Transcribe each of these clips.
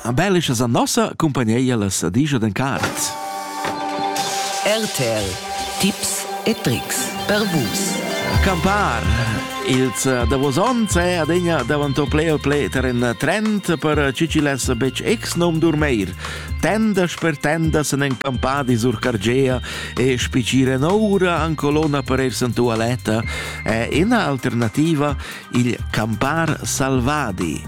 A bellischa san nossa cumpagneia las sadigia d'en caret. RTL Tips e Tricks per vus. Campar ils eh, davos onns è adegna davanto ple o ple ter en trend per ciciless betg ex nom durmeir. Tendas per tendas en en campadi sur Cargea e spicire noura an colonna per er santua letta è ina alternativa il campar salvadi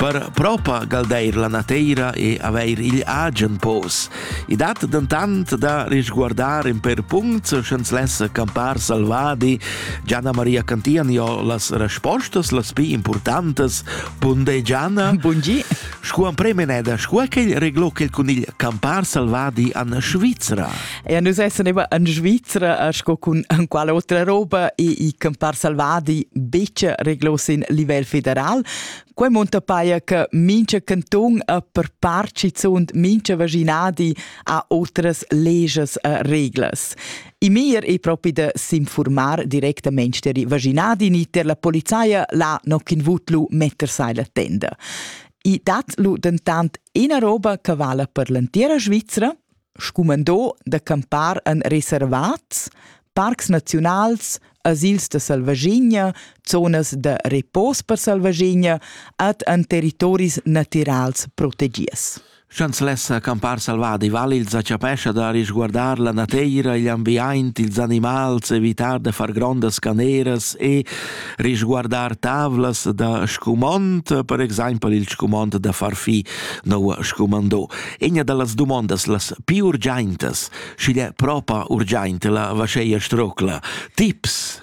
per propagar la nateira e avair il agen pos. I dat dentant da risguardar in per punct sch'ens lessa campar salvadi. Gianna Maria Cantian jo las respostas las pi importantes. Bunde Gianna. Buongi. Scu am premeneda, scu è quel reglò quel con il campar salvadi an Svizzera? Ja, nus essan immer in Svizra sco cun quale otra roba e i campar salvadi betg reglos in livel federal. Quei monta paia che mincha canton a per parci zunt mincha vaginadi ha otras leges e reglas. I mir è propi da s'informar directamente deri vaginadi ni ter la polizia la noc in vutlu metter sai la tenda. I dat lu dentant ina roba che vala per l'entira Svizzera, scumandò da campar en reservats, parcs naziunals, asils da selvaschina, zonas da repos per selvaschina ed en territoris natirals protegids. Chanzlessa campar selvadi valils a chapescha da risguardar la nateira, igl ambiaint, ils animals, evitar de far grondas caneras e risguardar tavlas da scumond, per exempel il scumond da far fi, noua scumandò. Egna da las dumondas las pi urgiaintas, schi d'he propa urgiaint la vascheia strocla. Tips!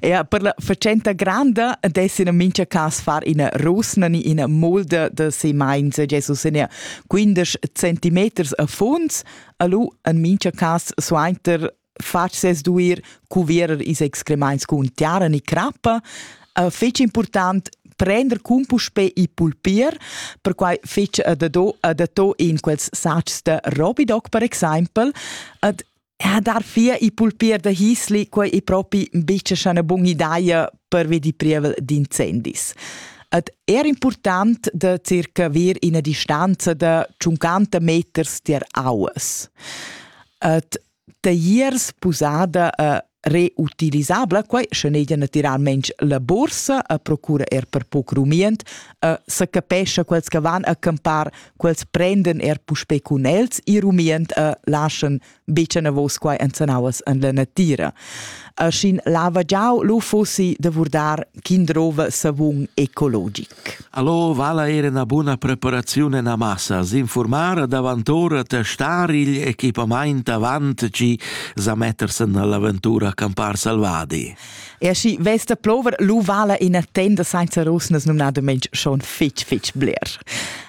Ja, per la facenta granda dessin in mincha cas far ina rusna ni ina mulda da se mainza Jesus in 15 centimeters a funds, alu en mincha cas suainter fatg ses duir cuvierer ils excremaints cun tiara ni crappa, uh, fetg important prender cun puspè il pulpier, perquai fetg adatto, adatto in quels satgs da Robidoc, per exempel, ad ha dar fia i pulpier da hisli, quei è propi bice una buona idea per vedi prievel d'incendis. Ed er important da circa avere una distanza da 50 meters tier aues. Et Tier spusada e reutilisabla, quai sche negia naturalmente la borsa e procura er per poc rumient e se capescha quels che van a campar, quels prenden er puspei cun els il rumient e lascian bice navos quai ensanauas en la natira. E schin lava giau lu fossi da vurdar ch'in drova savun ecologic. Allo vala era una buna preparazione na massa, s'informar davantora te star igl equipamaint avant chi sa mettersen all'avventura a campar salvadi. E aschi vesta plover lu vala ina tenda sainza rusnas numnadamente schon fitch fitch bler.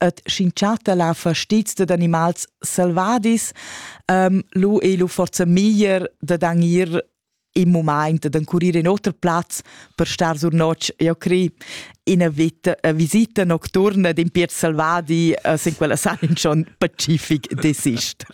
et schincharta la fastiz dad animals selvadis, um, lu ei lu forza meglier dad anir im moment ad encurire in oter plaz per star sur notg, io cri ina vita, eh, visita nocturna d'in pier selvadi eh, sin quella san in schon pacific desister.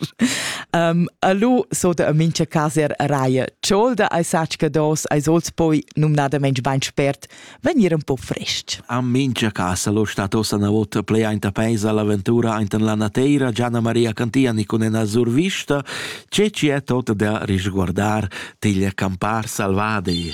um, a lu so da mincha casa er raia. Ciolda ai sacca dos, ai sols poi numnadament bein spert vegnir un po frest. A mincha casa lo stat ossa na vota plei aint a peisa l'aventura aint la nateira, Gianna Maria Cantiani con ena survista, ce ci è tot da risguardar teglia campar salvadei.